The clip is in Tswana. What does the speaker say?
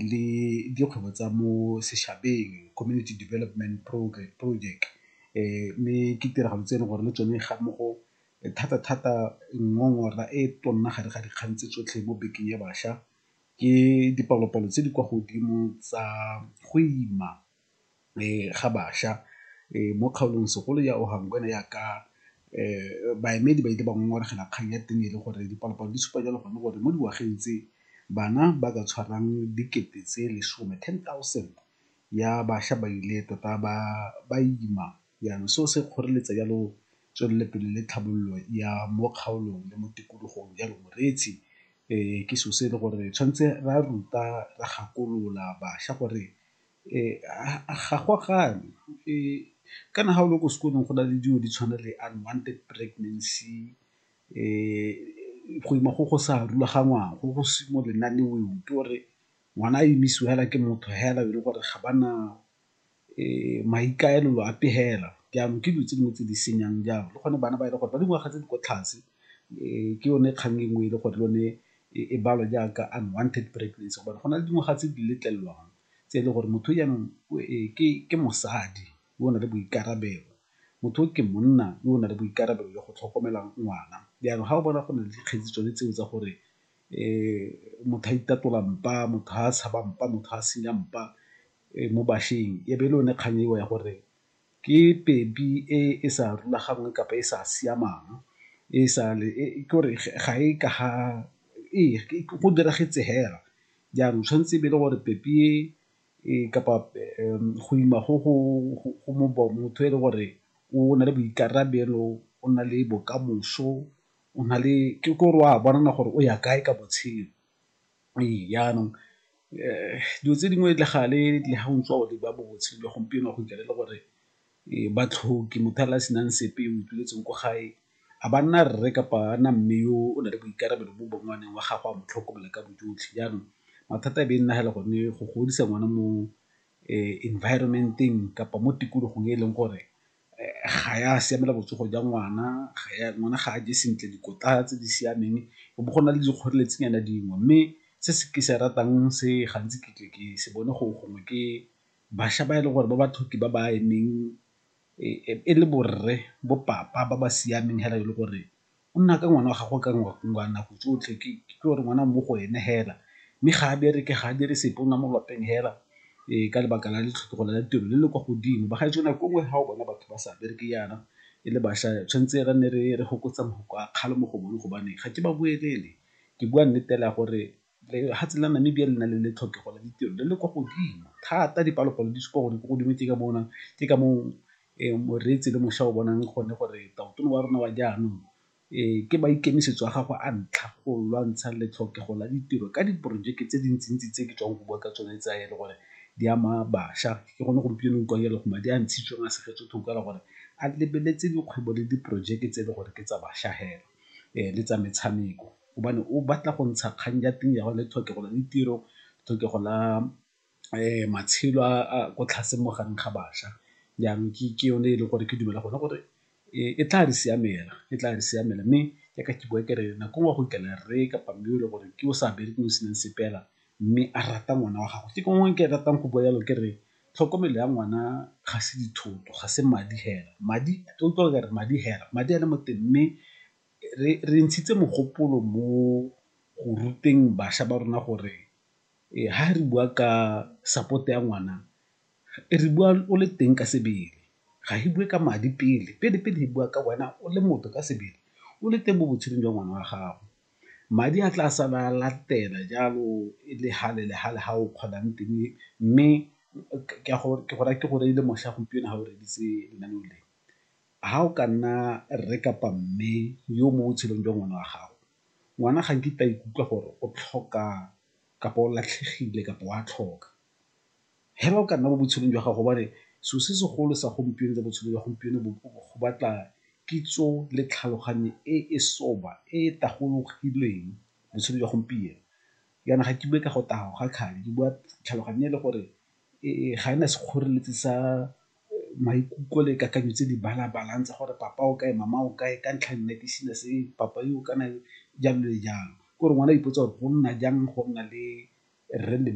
le dikgwebo tsa mo sešhabeng, community development project mme ke tiragalo tse e leng gore le tsone ga mmogo thata-thata ngongora e tona gare ga dikgang tse tsotlhe mo bekeng ya bašwa ke dipalopalo tse di kwa godimo tsa go ima. ga bašwa mo kgaolong segolo ya ya ka baemedi ba ile ba ngongoregela kgang ya teng e le gore dipalopalo di supa jalo gone gore mo dingwageng tse bana ba ka tshwarang dikete tse lesome, ten thousand, ya bašwa ba ile tota ba ima jaanong seo se kgoreletsa jalo tswelelopele le tlhabololo ya mo kgaolong le mo tikologong. Jalo moreetsi ke selo se e le gore tshwanetse ra ruta, ra gakolola bašwa gore Ga go a gana kana ga o le ko sekolong go na le dilo di tshwana le unwanted pregnancy go ima go go sa rulagangwang go go se mo lenaneong ke gore ngwana a emisiwa fela ke motho fela e le gore ga ba na maikaelelo a pegelo. Jaanong ke dilo tse dingwe tse di senyang jalo le gone bana ba e le gore ba dingwaga tse di kwa tlase ke yone kgang e nngwe e le gore le yone e balwa jaaka unwanted pregnancy gobane go na le dingwaga tse di letlelelwang tse e le gore motho jaanong ke mosadi yo o na le boikarabelo, motho o ke monna yo o na le boikarabelo jwa go tlhokomela ngwana. Jaanong ga o bona go na le dikgetsi tsone tseo tsa gore motho a itatola mpa, motho ga a tshaba mpa, motho ga a senya mpa mo bašweng e be e le yone kgang eo ya gore Ke pephi e e sa rulaganngweng kapa e sa siamang e sa le ke gore ga e ka ga ee go diragetse fela. Jaanong tshwanetse e be e le gore pephi e kapa go ima go motho e le gore o na le boikarabelo, o na le bokamoso, o na le ke gore o a bona gore o ya kae ka botshelo. Ee, jaanong dilo tse dingwe le gale le ha o ntse o leba botshelo jwa gompieno go fitlhela e le gore ba tlhoke motho fela a senang sepe o ituletseng ko gae a ba nna rre kapa a nna mme yo o na le boikarabelo bo bo ngwaneng wa gago a mo tlhokomela ka bojotlhe. Jaanong mathata e be e nna fela gone go godisa ngwana mo environment-eng kapa mo tikologong e e leng gore ga ya siamela botsogo jwa ngwana, ngwana ga a je sentle dikotla tse di siameng go bo go na le dikgoreletsi nyana dingwe. Mme se ke se ratang se gantsi ke tle ke se bone gore gongwe ke bašwa ba e leng gore ba baithuti ba ba emeng e le borre bo papa ba ba siameng fela e le gore o nna ka ngwana wa gago ka nako tsotlhe ke gore ngwana mo go ene fela mme ga a bereke ga a dire sepe o nna mo lapeng fela ka lebaka la letlhokego la tiro le le kwa godimo. Bagaetsho nako nngwe ga o bona batho ba sa bereke jaana e le bašwa tshwanetse re nne re fokotsa mafoko a kgale mo go bone gobane ga ke ba boelele ke bua nnete fela gore Lefatshe la Namibia le na le le tlhokego la ditiro le le kwa godimo thata, dipalopalo di supa gore ko godimo ke ka moo ke ka moo moreetsi le mošwa o bonang gone gore tautona wa rona wa jaanong ke maikemisetso a gagwe a ntlha go lwantsha le tlhokego la ditiro ka diporojeke tse dintsintsi tse ke tswang go bua ka tsone tsa e le gore di ama bašwa. Ke gone gompieno o utlwang e le go madi a ntshitsweng a segetswe thoko ka gore a lebeletse dikgwebo le diporojeke tse e le gore ke tsa bašwa fela le tsa metshameko. gobane o batla go ntsha kgang ya teng ya gore le tlhokego la ditiro, tlhokego la matshelo a ko tlase mo gareng ga bašwa. Jaanong ke yone e leng gore ke dumela gone gore e tla re siamela, e tla re siamela mme ya ka ke bowa ke re nako nngwe go fitlhela rre kapa mme o e leng gore ke o sa berekeng o senang sepe fela mme a rata ngwana wa gagwe. Ke gone ke ratang go bua jalo ke re tlhokomelo ya ngwana ga se dithoto, ga se madi fela, madi o utlwa ba re madi fela, madi a le mo teng mme Re re ntshitse mogopolo mo go ruteng bašwa ba rona gore ha re bua ka support ya ngwana re bua o le teng ka sebele. Ga re bue ka madi pele, pele pele re bua ka wena o le motho ka sebele o le teng mo botshelong jwa ngwana wa gago. Madi a tla sala a latela jalo e le hale le hale ha o kgonang teng mme ke go raya ke gore e le mošwa gompieno ha o reditse lenaneo le. Ga o ka nna rre kapa mme yo mo botshelong jwa ngwana wa gago, ngwana ga nkitla a ikutlwa gore o tlhoka kapa o latlhegile kapa o a tlhoka. Hela o ka nna mo botshelong jwa gago gobane selo se segolo sa gompieno tsa botshelo jwa gompieno bo go batla kitso le tlhaloganyo e e soba e e tagologileng botshelo jwa gompieno. Jaana ga ke bue ka go taga ga kgang ke bua tlhaloganyo e le gore ga e na sekgoreletsi sa maikutlo le kakanyo tse di balabalang tsa gore papa o kae mama o kae ka ntlha nna ke sena se papa yo kana jalo le jalo ke gore ngwana a ipotsa gore go nna jang go nna le rre le mme.